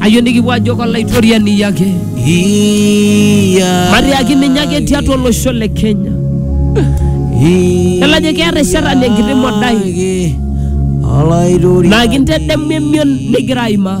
ayieu nikipuo ajo kolaitoriani yake matiaki ninye ake tiatua olosho le kenya elajo keeta ishata le enkiti modai naa kintedemu emion nigira aimaa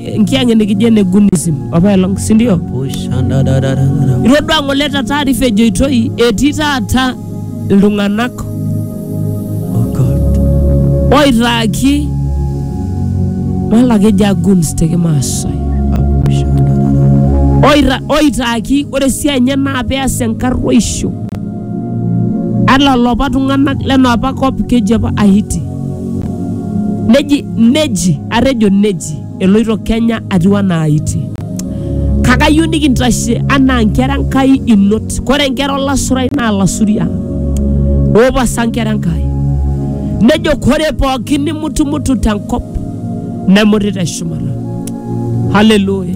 eh, nkiang'e nikijo ene gunism apaelong sindio itodua ng'ole ta taarifa ejoitoi etii taata iltung'anak oitaaki malakeja guns te kimaasai Oita- oitaaki ore esiai enye naa peas enkarruaisho Ala loopa tung'anak lena apa kop keji apa Ahiti. Neji neji atejo neji eloito Kenya atiu anaa Ahiti. Kake ayieu nikintashe anaa nkera Enkai inot. Kore nkera olasurai naa lasuria oopasa nkera Enkai. Nejo kore pooki nimutumutu tenkop nemut te shumata. Haleluya!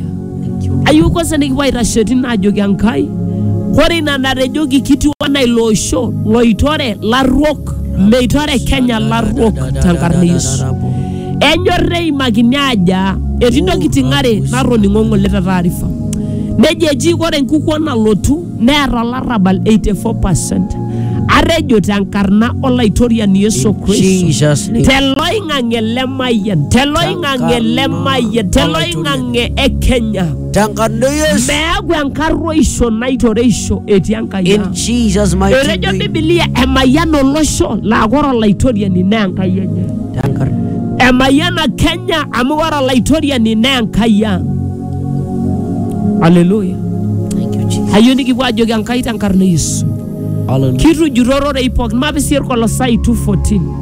Ayieu kwanza nikipuo aitashe tine ajoki Enkai, ore ina natejoki kitiu anaa ilo osho loitore larruok, meitore Kenya larruok tenkarna e Yesu. Enyor neimakini aja etii ntokitin are natoning'o ng'ole te taarifa. Nejo eji ore enkukuo nalotu neeta olarrabal 84%. Atejo tenkarna olaitoriani Yesu Kristo. Jesus name. Teloing'ang'e le mayian, teloing'ang'e le mayian, teloing'ang'e oloing'ang'e e Kenya. Tenkano Yesu. Meaku enkarruoisho naitoreisho etii Enkai In ang'. Jesus' mighty Etejo name. Biblia emayian olosho laa ore olaitoriani naa Enkai enye. Tenkar. Emayiana Kenya amu ore olaitoriani naa Enkai ang'. Haleluya. Thank you, Jesus. Ayieu nikipuo ajoki Enkai tenkarna e Yesu. Hallelujah. Kitujurro rorei pookin, mapisir Kolosai 2:14.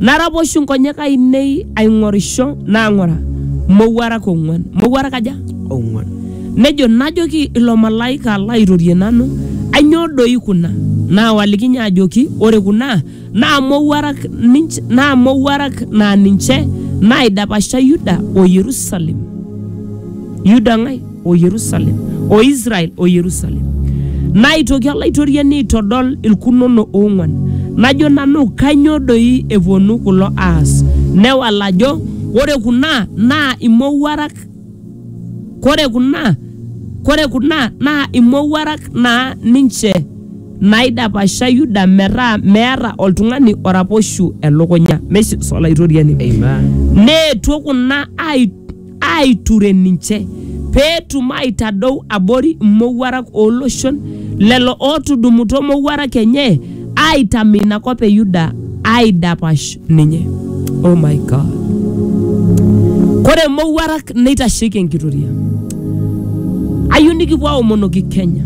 Naraposhu nkonyek ainei aing'orisho naa ng'ura, mowuarak ong'uan. Mowuarak aja? ong'uan. Nejo, najoki ilo malaika laairorie nanu, Ainyoo doi kuna? Naawaliki ninye ajoki, Ore kuna naa mowuarak ninche, naa mowuarak naa ninche naaidapasha Yuda o Yerusalem. Yuda ng'ae? o Yerusalem, o Israel o Yerusalem. Naitoki Olaitoriani aitodol ilkunono oong'uan, najo nanu kainyoo doi epuonu kulo aas? Newal ajo ore kuna naa imowuarak, kore kuna kore kuna naa imowuarak naa ninche naidapasha Yuda metaa meata oltung'ani oraposhu elukunya. Meshes Olaitoriani. Amen. Neetuo kuna ai aaiture ninche pee etum aitadou abori imowuarak oo loshon lelo ootudumutua imowuarak enye aaitamu ina kop e Yuda aaidapash ninye. Oh my God. Kore imowuarak neitasheiki enkitoria. Ayieu nikipuo aomonoki Kenya.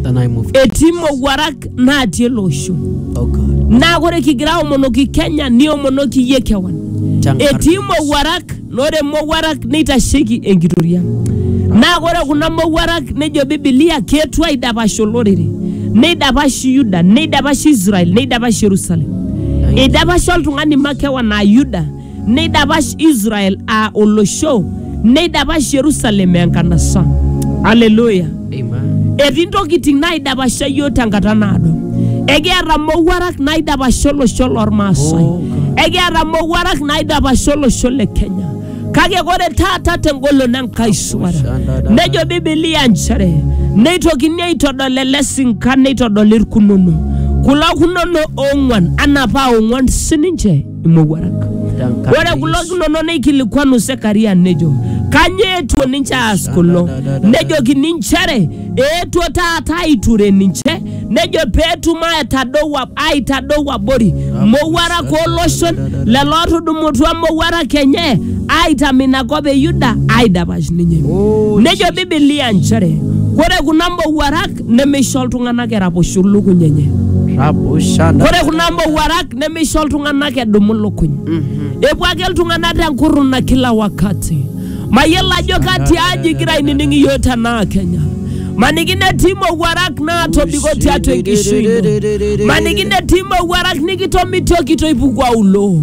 The name of Etii imowuarak naatii ele osho. oh God. Naa kore kigira aomonoki Kenya niomonoki iyie kewan. Chankarna. Etii imowuarak Ore mowuarak neitasheiki enkitoria. Naa ore kuna mowuarak nejo Bibilia keetuo aidapash olorere, neidapash Yuda, neidapash Israel, neidapash Jerusalem. Eidapash oltung'ani makewan aa Yuda, neidapash Israel aa olosho, neidapash Jerusalem aa enkanasa. Haleluya! Amen. etii ntokitin naidapasha yiok tenkata naado ekiata mowuarak naidapasha olosho lormaasai Oh, God. ekiata mowuarak naidapasha olosho le kenya kake ore taata tengolon enkai suara Shandada. nejo bibilia nchere neitokini aitodol ele sinka neitodoli irkunono kulo kunono oong'uan anaa paa ong'uan sininche imowuarak. Tenkaraki- Ore kulo tunonok neikilikwanu Sekaria nejo, kanyoo eetuo ninche aas kulo? Nejokini inchere eetuo taata aiture ninche, nejo peetum aitadou ab- aitadou abori mowuarak ooloshon lelo otudumutua mowuarak enye aitam ina kop e Yuda aidapash ninye. Nejo Biblia inchere ore kuna mowuarak nemeisho iltung'anak eraposho lukuny enye Rabushana. ore kuna mowuarak nemeisho iltung'anak edumu lukuny epuo ake iltung'anak tenkurruna kila wakati mayiolo ajo kati aji igira ainining iyio tenaa kenya maniki netii mowuarak naatobiko tiatua enkishui ino maniki netii mowuarak nikitomitioki toipuku auloo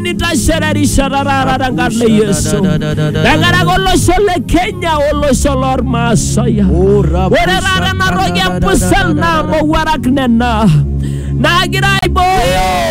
nitashererisho taata tenkarna e Yesu. Tenkaraki olosho le Kenya olosho lormaasai. Ore taata ena toki e pusel naa mowuarak nena naagira aibooyo